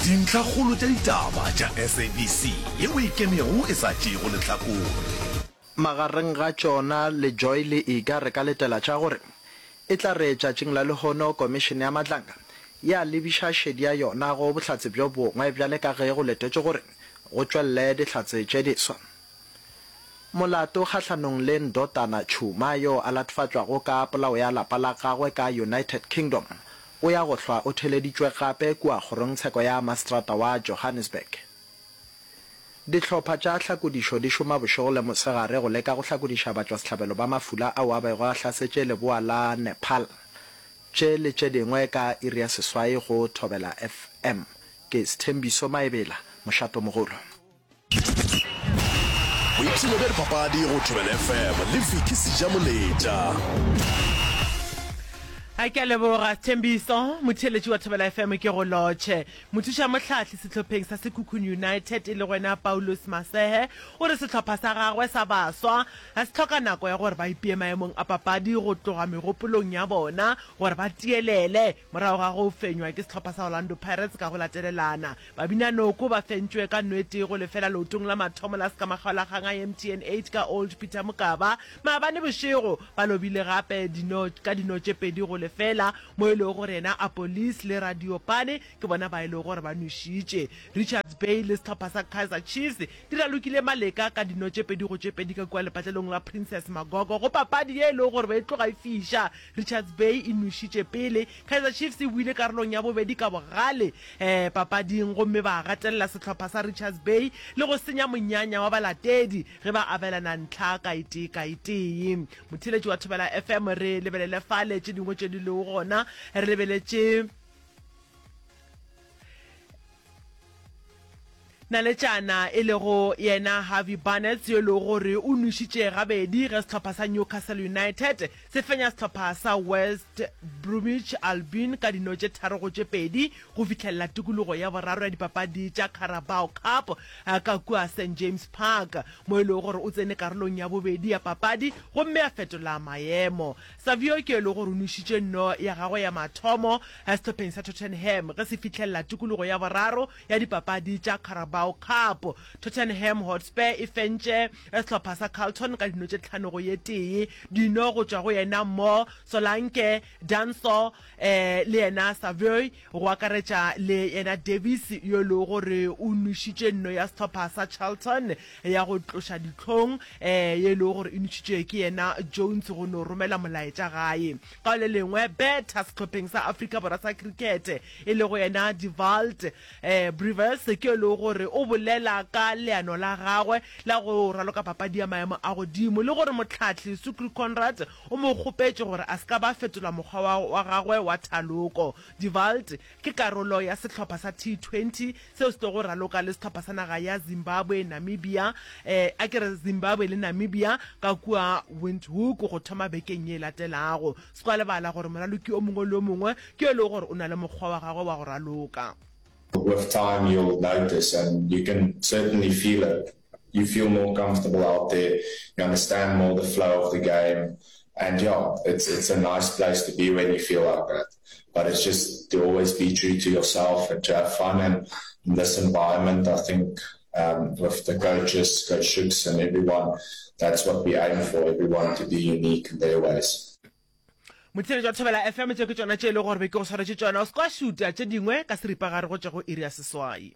Dintlhakgolo tša ditaba tša SABC ye o e kemego e sa tšeego lehlakore. Magareng ga tšona le Joy le Iga re ka letela tša gore e tla re tšatšing la lehono Komišene ya Matlanga ya lebiša šedi ya yona go bohlatse bjo bongwe bjale ka ge go letetšwe gore go tšwelele dihlatse tše diswa molato kgahlanong le Ndotana Tshuma yo a latofatšwago ka polao ya lapa la gagwe ka United Kingdom O ya go hlwa o theleditšwe gape kua kgorongtsheko ya masetrata wa Johannesburg. Dihlopha tša hlakodišo di šoma bošego le mosegare go leka go hlakodiša batšwasehlabelo ba mafula ao a bego a hlasetše leboa la Nepal. Tše le tše dingwe ka iri ya seswai go Thobela FM. Ke Sthembiso Maebela, Mošatomogolo. boipshino bja dipapadi go tobel fm le viki sejamoletša a ke a leboga thembiso motheletši wa thobela fm ke go lotšhe mothuša mohlahli setlhopheng sa sekhukhung united e le gwena paulos masehe o re setlhopha sa gagwe sa baswa ga se tlhoka nako ya gore ba ipee maemong a papadi go tloga megopolong ya bona gore ba tielele morago ga go fenywa ke setlhopha sa orlando pirates ka go latelelana Babinanoko ba fentšwe ka nwete go lefela leotong la mathomo la Sekamagaolagang a MTN eight ka Old Peter Mokaba maabane bošego. Ba lobile gape dino ka dino tše pedi go lefela, mo e lego gore yena Apolis le Radiopane ke bona ba e lego gore ba nwešitše. Richards Bay le sehlopha sa Kaizer Chiefs di ralokile maleka ka dino tše pedi go tše pedi ka kua lepatlelong la Princess Magogo go papadi ye e lego gore ba e tloga e fiša Richards Bay e nošitše pele. Kaizer Chiefs e buile karolong ya bobedi ka bogale papading gomme ba gatelela sehlopha sa Richards Bay le go senya monyanya wa balatedi ge ba abelana ntlha ka e tee ka e tee. Motheeletši wa Thobela FM, re lebelele fale tše dingwe tše di lego gona. Re lebeletše. Naletšana e lego yena Harvey Barnes yo e lego gore o nwešitše gabedi ge sehlopha sa Newcastle United se fenya sehlopha sa West Bromwich Albion ka dino tše tharo go tše pedi go fihlelela tikologo ya boraro ya dipapadi tša Carabao Cup ka kua St James Park mo e lego gore o tsene karolong ya bobedi ya papadi gomme a fetola maemo Savio ke e lego gore o nwešitše nno ya gagwe ya mathomo sehlopeng sa Tottenham ge se fihlelela tikologo ya boraro ya dipapadi tša Carabao Cup. Tottenham Hotspur e fentše sehlopha sa Carlton ka dino tše tlhano go ye tee, dino go tšwa go yena Mo Solanke, Danso, le yena Savoy, go akaretša le yena Davies yo e lego gore o nwešitše nno ya sehlopha sa Charlton ya go tloša dihlong, ye e lego gore e nwešitšwe ke yena Jones go no romela molaetša gae. Ka le lengwe, betha sehlopheng sa Afrika Borwa sa Cricket e lego yena Devalt Brewers ke yo e lego gore o bolela ka leano la gagwe la go raloka papadi ya maemo a godimo le gore mohlahli Sukri Conrad o mo kgopetše gore a se ka ba fetola mokgwa wa wa gagwe wa thaloko. Die Walt ke karolo ya sehlopha sa T20 seo se tlogo raloka le sehlopha sa naga ya Zimbabwe, Namibia, eh, a ke re Zimbabwe le Namibia ka kua Windhoek go thoma bekeng ye e latelago. Se kwa lebala gore moraloki o mongwe le o mongwe ke yo e lego gore o na le mokgwa wa gagwe wa go raloka. With time you'll notice and you can certainly feel it You feel more comfortable out there, you understand more the flow of the game and yeah, it's it's a nice place to be when you feel like that. But it's just to always be true to yourself and to have fun and in this environment I think um, with the coaches, coach Shooks and everyone, that's what we aim for, everyone to be unique in their ways. motshelo jwa thobela fm tse ke tsona tše e le gore be ke go swaretše tsona o se kwa šuta tše dingwe ka seripagare go tša go iri ya seswai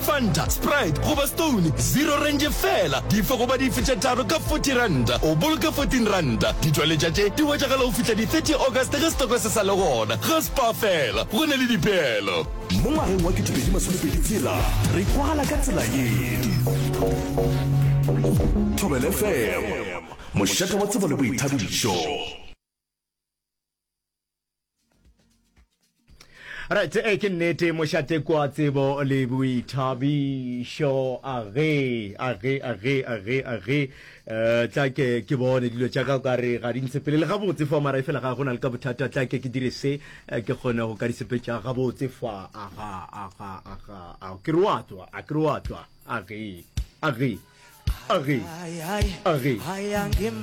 Fanta, Sprite goba Stone Zero Range feela. Dife goba dife tše tharo ka forty ranta, o boloka fourteen ranta. Ditšweletša tše di hwetšagala go fihla di thirty August ge setoko se sa le gona. Ga Spar feela go na le dipeelo. Mo ngwageng wa ketepedi masomepedi tshela re kwagala ka tsela ye. Thobela FM, mošate wa tsebo le boithabišo. right e ke nnete mošate kwa tsebo le boithabišo age age age age age um tla ke ke bone dilo tša ka ka re ga di ntsepelele gabotse fa mara e fela ga go na le ka bothata tla ke ke dire se eh, ke kgone go ka disepetša gabotse fa aga aga aga a ke re wa tswa a ke re wa tswa age age age age